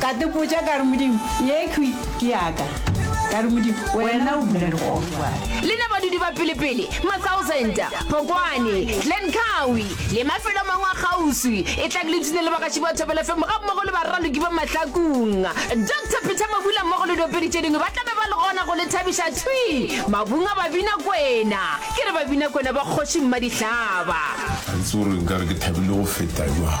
Ka tipotša ka re, Modimo, yekhwi ke ya ka? Ka re, Modimo, Wena o bule dikgogo bjale. Le na badudi ba pelepele, Masausenta, Phokwane, Glen Cowie, le mafelo a mangwe a kgauswi, etlang le tune le bagaši ba Thobela FM gammogo le baraloki ba Mahlakong. Doctor Peter Mabula mmogo le diopedi tše dingwe ba tla be ba le gona go le thabiša. Thwi! Mabung a Babinakwena! Ke re Babinakwena ba Kgoši Mmadihlaba! Ga ke tsebe gore nka re ke thabile go feta bjang.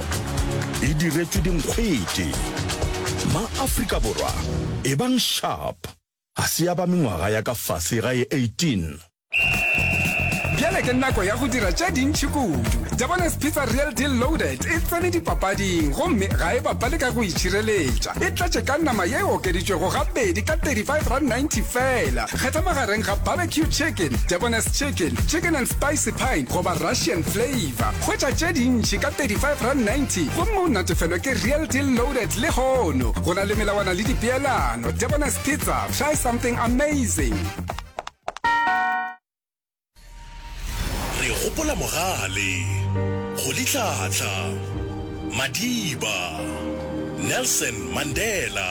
e diretšwe dinkgwete. Ma-Afrika Borwa, ebang sharp! Ga se ya ba mengwaga ya ka fase ga e 18. Bjale ke nako ya go dira tše dintši kudu. Jabones Pizza Real Deal Loaded e tsene dipapading gomme ga e bapale ka go itšhireletša. E tletše ka nama ye e okeditšwego gabedi ka R35.90 feela. Kgetha magareng ga barbecue chicken, Jabones chicken, chicken and spicy pine goba Russian flavour. Ba hwetša tše dintši ka R35.90 gomme o natefelwe ke Real Deal Loaded lehono. Go na le melawana le dipeelano. Debonairs Pizza, try something amazing! Re gopola Mogale, Kgolitlhatlha, Madiba, Nelson Mandela.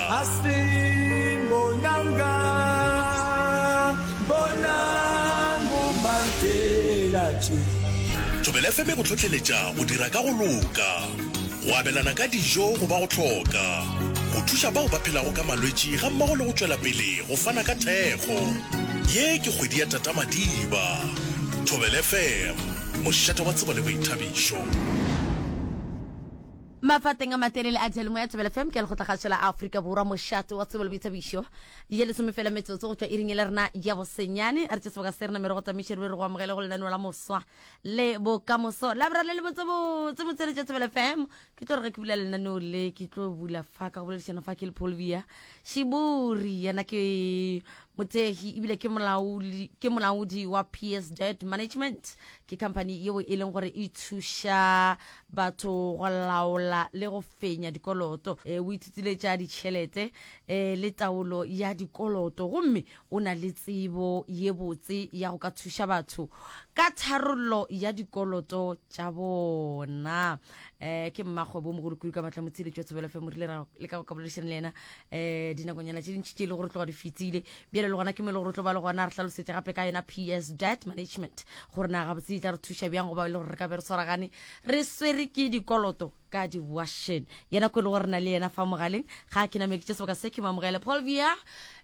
Bonang o martela tše. Thobela FM e go hlohleletša go dira ka go loka, go abelana ka dijo go ba go hloka, go thuša bao ba phelago ka malwetši gammogo le go tšwela pele go fana ka thekgo. Ye ke kgwedi ya Tata Madiba. Thobela FM, mošate wa tsebo le boithabišo. Mafateng a matelele a diyalemoya Thobela FM ke a lekgotlakgašo la Afrika Borwa, mošate wa tsebo le boithabišo. Ye lesome fela metsotso go tšwa iring e le rena ya bosenyane. Re tše sebaka se rena mme re go tamešere be re go amogele go lenaneo la Moswa le Bokamoso Labra le Lebotse-botse motseletši ya Thobela FM. Ke tlo re ge ke bula lenaneo le ke tlo bula fa ka go boledišana fa ke le Polvia Shibori yena ke mothegi ebile ke molaodi ke molaodi wa PSZ Management ke company yeo e leng gore e thuša batho go laola le go fenya dikoloto. O ithutile tša ditšhelete le taolo ya dikoloto gomme o na le tsebo ye botse ya go ka thuša batho ka tharollo ya dikoloto tša bona. Ke mmakgwebomogolo kudu ka matla motsheletši wa Thobela FM. Re ile ra leka go ka boledišana le yena dinakonyana tše dintši tše e le gore tloga di fetile Bjale le gona ke mo e le gore o tlo ba le gona a re hlalosetše gape ka yona PS Debt Management gore na gabotse e tla re thuša bjang goba e le gore re ka be re swaragane re swere ke dikoloto ka dibuašen yena ko e le gore re na le yena fa mogaleng ga a ke namekitše sebaka se ke mo amogele Paul Via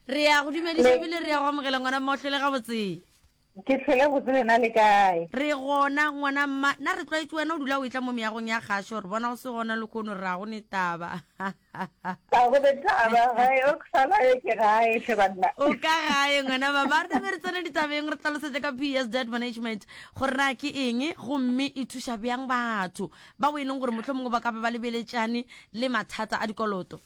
re ya go dumediša ebile re ya go amogela ngwana mmotlho le gabotse. Ke hlwele botse lena le kae? Re gona, ngwana mma. Na re tlwaetše wena o dula o etla mo meagong ya gašo, re bona o se gona lehono re a go netaba. Ga go netaba, ga e oksala yo ke gae hle banna. O ka gae ngwana mama. Rena be re tsene ditabeng, re tlalosetše ka PS Debt Management gore na ke eng gomme e thuša bjang batho bao e leng gore mohlomongwe ba ka be ba lebeletšane le mathata a dikoloto.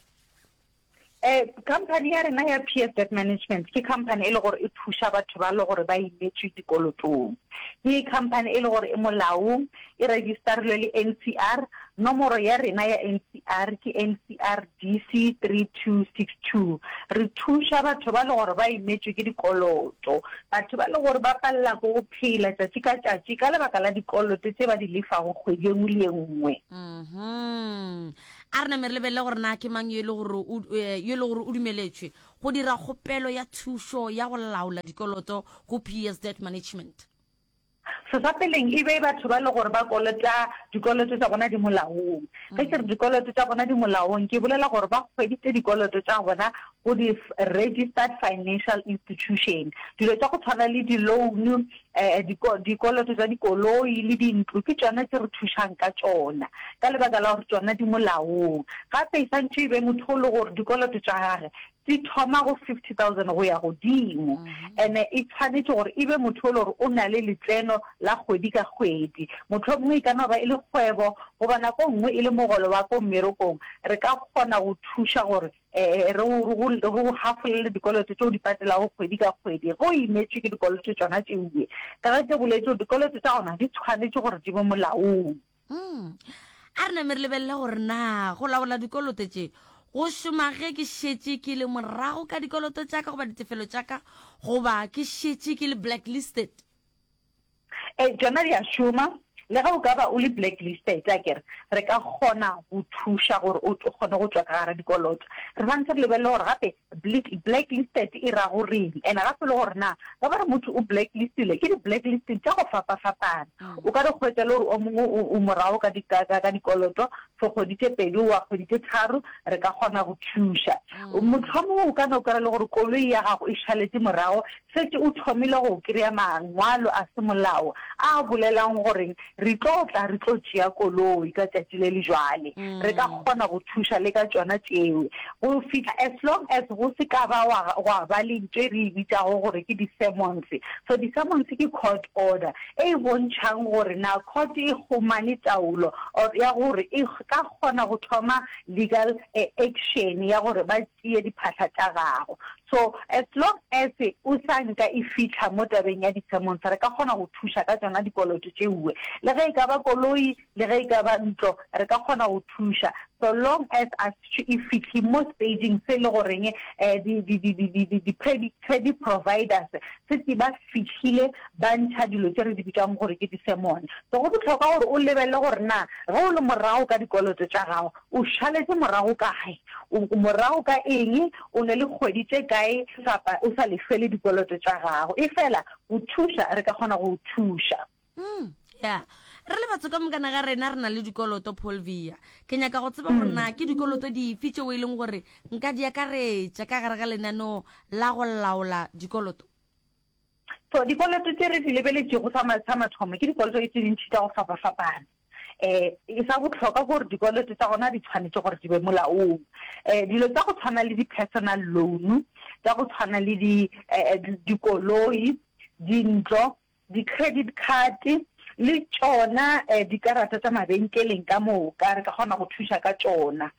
Eh, company ya rena ya PS Debt Management ke company e le gore e thuša batho ba le gore ba imetšwe dikolotong. Ke company e le gore e molaong, e registerilwe le NCR. Nomoro ya rena ya NCR ke NCR DC 3262. Re thuša batho ba le gore ba imetšwe ke dikoloto, batho ba le gore ba palela ko go phela tšatši ka tšatši ka lebaka la dikoloto tše ba di lefago kgwedi e nngwe le e nngwe. Mm-hmm. A re name re lebelele gore na ke mang yo e le gore o, eh, yo e le gore o dumeletšwe go dira kgopelo ya thušo ya go laola dikoloto go PS Debt Management. Sesapeleng e be batho ba le gore ba kolota dikoloto tša bona di molaong. Ge ke re dikoloto tša bona di molaong, ke bolela gore ba hweditše dikoloto tša bona go di-registered financial institution. Dilo tša go tshwana le di-loan, um dikoloto tša dikoloi le dintlo ke tšona tše re thušang ka tšona ka lebaka la gore tšona di molaong. Gape e santšho e be motho o le gore dikoloto tša gage di thoma go fifty thousand go ya godimo, and-e e tshwanetše gore e be motho o le gore o na le letseno la kgwedi ka kgwedi. Mohlomongwe e ka no ba e le kgwebo goba nako nngwe e le mogolo wa ko mmerekong, re ka kgona go thuša gore Ee, re go, re go, re go hafolele dikoloto tše o di patelago kgwedi ka kgwedi. Ge o imetšwe ke dikoloto tšona tše obe, ka ge ke boletše, dikoloto tša gona di tshwanetše gore di be molaong. Umm. A re name re lebelele gore na go laola dikoloto tše go šoma ge ke šetše ke le morago ka dikoloto tša ka goba ditefelo tša ka goba ke šetše ke le blacklisted. E, tšona di a šoma. Le ge o ka ba o le blacklisted, akere re ka kgona go thuša gore o kgone go tšwa ka gara dikoloto. Re santse re lebelele gore gape blacklisted e ra go reng, and gape le gore na ge ba re motho o blacklistile, ke di-blacklisting tša go fapa-fapana. Mm. O ka re kgwetša le gore o mongwe o, o morago ka, di, ka, ka, ka dikoloto for kgwedi tše pedi wa kgwedi tše tharo, re ka kgona go thuša. Mm. Mohlomongwe o ka no kry-a le gore koloi ya gago e šaletse morago šetše o thomile go kry-a mangwalo a semolao a bolelang gore re tlo tla re tlo tšea koloi ka tšatši le le jwale, re ka mm. kgona go thuša le ka tšona tšeo go fihla as long as go se ka ba gwa ba le ntho e re e bitšago gore ke di-sermons. So di-sermons ke court order e e bontšhang gore na court e humane taolo or ya gore e ka kgona go thoma legal eh, action ya gore ba tšee diphahla tša gago. So, as long as o sa nka e fihla mo tabeng ya di-sermons, re ka kgona go thuša ka tšona dikoloto tšeue. Le ge e ka ba koloi, le ge e ka ba ntlo, re ka kgona go thuša, so long as a se e fihle mo stage-ing se le goreng um di, di, di, di, di, di, di-credit, credit providers se tse ba fihlile ba ntšha dilo tše re di bitšang gore ke di-sermon. So go bohlokwa gore o lebelele gore na ge o le morago ka dikoloto tša gago, O šaletše morago kae? O morago ka eng? O na le kgwedi tše kae kapa o sa lefele dikoloto tša gago? Efela go thuša, re ka kgona go o thuša. Umm, ya. Re le batho ka mokana ga rena re na le dikoloto, Polvia. Ke nyaka go tseba gore na ke dikoloto dife tšeo e leng gore nka di akaretša ka gare ga lenaneo la go laola dikoloto. So dikoloto tse re di lebeletšego sa mathomo ke dikoloto tse dintšhi tsa go fapafapana um e sa botlhokwa ke gore dikoloto tsa gona di tshwanetse gore di be molaong um dilo tsa go tshwana le di-personal loan tsa go tshwana le eh, dikoloi dintlo di-credit card le tšona um dikarata tsa mabenkeleng ka moka re ka kgona go thuša ka tšona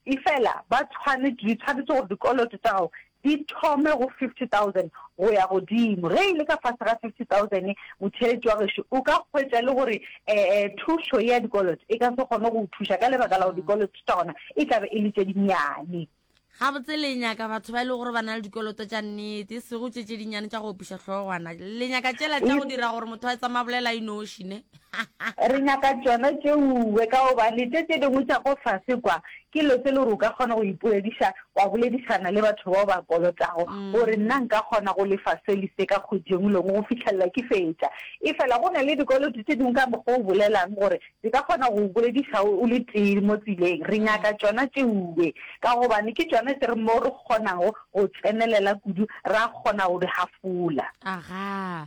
Efela ba tshwane, di tshwanetse gore dikoloto tša gago di thome go 50,000 go ya godimo. Ge e le ka fase ga 50,000, motheeletši wa gešo o ka hwetša e le gore ee thušo ye ya dikoloto e ka se kgone go o thuša ka lebaka la gore dikoloto tša gona e tla be e le tše dinnyane. Gabotse le nyaka batho ba e lego gore ba na le dikoloto tša nnete, e sego tše tše dinnyane tša go opiša hlogwana. Le nyaka tšela tša go dira gore motho a etsamabolela a inoši, ne? Re nyaka tšona tšeue ka gobane tše tše dingwe tša ko fase kwa ke lo se le gore o ka kgona go ipoediša wa boledišana le batho bao ba kolotago gore nna nka kgona go lefa se le se ka kgwedi engwe le engwe go fihlelela ke fetša. Efela go na le dikoloto tše dingwe ka mokgwa o bolelang gore di ka kgona go go bolediša o le tee mo tseleng. Re nyaka tšona tšeue ka gobane ke tšona tše re mo re kgonago go tsenelela kudu ra kgona go di hafola. Agaa.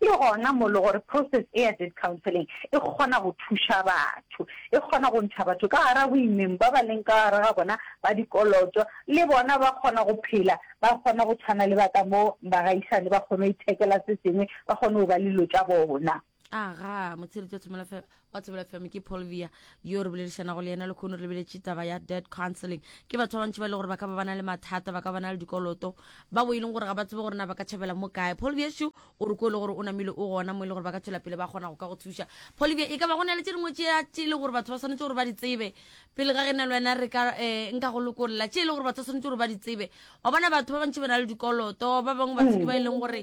Ke gona mo le gore process e ya debt counseling e kgona go thuša batho. E kgona go ntšha batho ka gara boimeng ba ba leng ka gare ga bona ba dikoloto, le bona ba kgona go phela, ba kgona go tshwana le ba ka mo bagaisane, ba kgone go ithekela se sengwe, ba kgone go ba le dilo tša bona. Agaa, Motshireledi wa Tshomolafelo wa tsebela fm ke polvia yo re boledišanago le yena lekhono re beletše taba ya dead counseling ke batho ba bantši ba e le gore ba ka ba bana le mathata ba ka bana le dikoloto ba bo e leng gore ga ba tsebe gore na ba ka tšhabela mo kae polvia šo o re ko e le gore o namile o gona mo e le gore ba ka tšwela pele ba kgona go ka go thuša polvia e ka ba go na le tše dingwe tše tše e le gore batho ba swanetse gore ba di tsebe pele ga ge na le wena re ka eh, nka go lokolla tše e le gore batho ba swanetse gore ba di tsebe wa bona batho ba bantši ba na le dikoloto ba bangwe ba tsedi ba e leng gore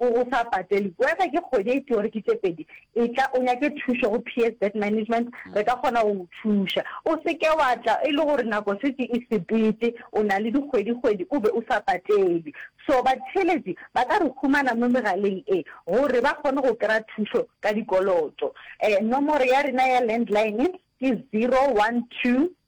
O o sa patele. Wena ke kgwedi e tee gore ke tše pedi, etla o nyake thušo go PS Debt Management, re ka kgona go go thuša. O se ke wa tla e le gore nako šetše e sepete, o na le dikgwedi-kgwedi o be o sa patele. So batheeletši ba ka re humana mo megaleng e gore ba kgone go kry-a thušo ka dikoloto. Nomoro ya rena ya landline ke zero one two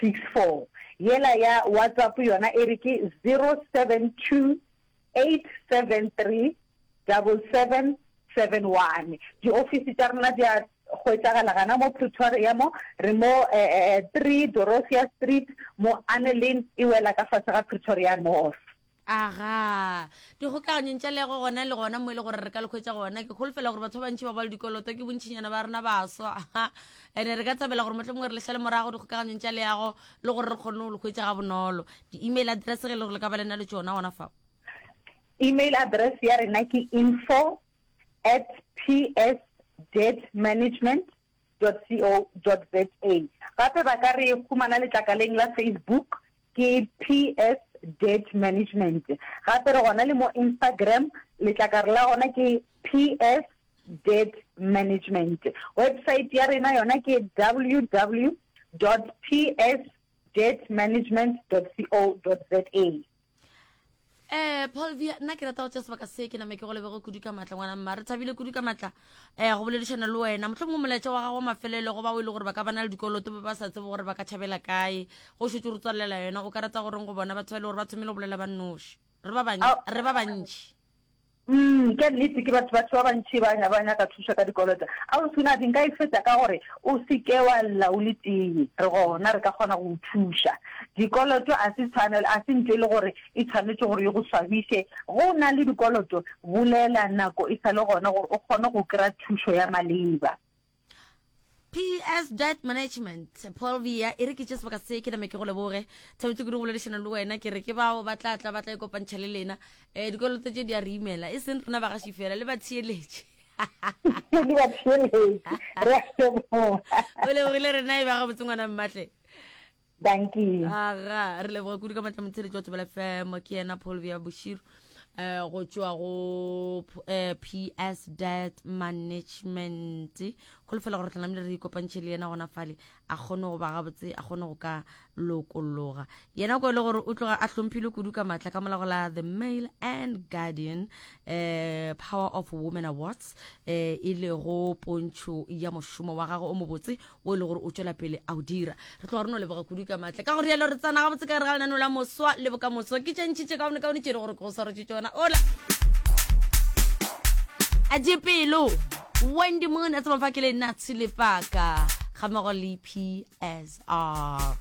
64 yela ya WhatsApp yona e re ke 0728737771. Di ofisi tša rena di a hwetšagala gana mo Pretoria mo, re mo 3 Dorothea Street mo Anne Lane e wela ka fase ga Pretoria North. Aga. Dikgokaganyong tša lego gona le gona mo e le gore re ka le khwetsa gona, ke kholofela gore batho ba bantši ba ba le dikoloto ke bontšhinyana ba rena baswa. Ene re ka thabela gore mohlomongwe re le šale morago dikgokaganyong tša leago le gore re kgonne go le khwetsa ga bonolo. Di-email address ge le gore le ka ba le na le tšona gona fao. Email address ya rena ke info at psdebtmanagement www.ccc.co.za. Gape ba ka re humana letlakaleng la Facebook, ke PS Debt Management. Gape re gona le mo Instagram, letlakare la gona ke PS Debt Management. Website ya rena yona ke www.psdebtmanagement.co.za. eh polvia nna ke rata go tšea sebaka se ke name ke go lebego kudu ka matla ngwana mma re thabile kudu ka matla um go boledišana le wena motlho mongwe molaetša wa gago mafelelo go ba o e le gore ba ka bana le dikoloto ba ba sa tsebe gore ba ka tšhabela kae go šetse re tswalela yona o ka rata goreng go bona batho ba e le gore ba thomile go bolela ba nnoši re ba bantši Umm ke nnete ke batho batho ba bantši ba ba nyaka thušo ka dikoloto. Ausi Nabi nka e feta ka gore o se ke wa lla o le tee re gona re ka kgona go o thuša. Dikoloto a se tshwanelo a se ntho e le gore e tshwanetše gore e go swabiše. Ge o na le dikoloto bolela nako e sa le gona gore o kgone go kry-a thušo ya maleba. PS Debt Management Paul Via e re ke tše sebaka se ke name ke go leboge thabetse kudu go boledišana le wena ke re ke bao ba tla tla ba tla ikopantšha le lena um dikoloto tše di a re imela e seng rena ba gaši fela le batheeletše le batheeletše re a leboga o lebogile rena e ba gabotse ngwana mmatle Dankie. Aga, re leboga kudu ka matla motheletši wa Tsebela FM ke yena Paul Via Bushiru eh go tšwa go eh, PS Debt Management go lefela gore tlanamile re ikopantšhe le yena gona fale a kgone go ba gabotse a kgone go ka lokologa yena ko e le gore o tloga a hlomphile kudu ka matla ka molago la the mail and guardian eh power of women awards eh e lego pontšho ya mošomo wa gagwe o mobotse o e le gore o tšwela pele a o dira re tloga re no leboga kudu ka maatla ka gore yalo re tsena gabotse ka re ga lenano la moswa le bokamoso ke tšentšhitše kaone kaone tšere gore ke go swarotše tsona ola a je pelo wendy mone a tsamafa ke le natsi lepaka ga mogo le psr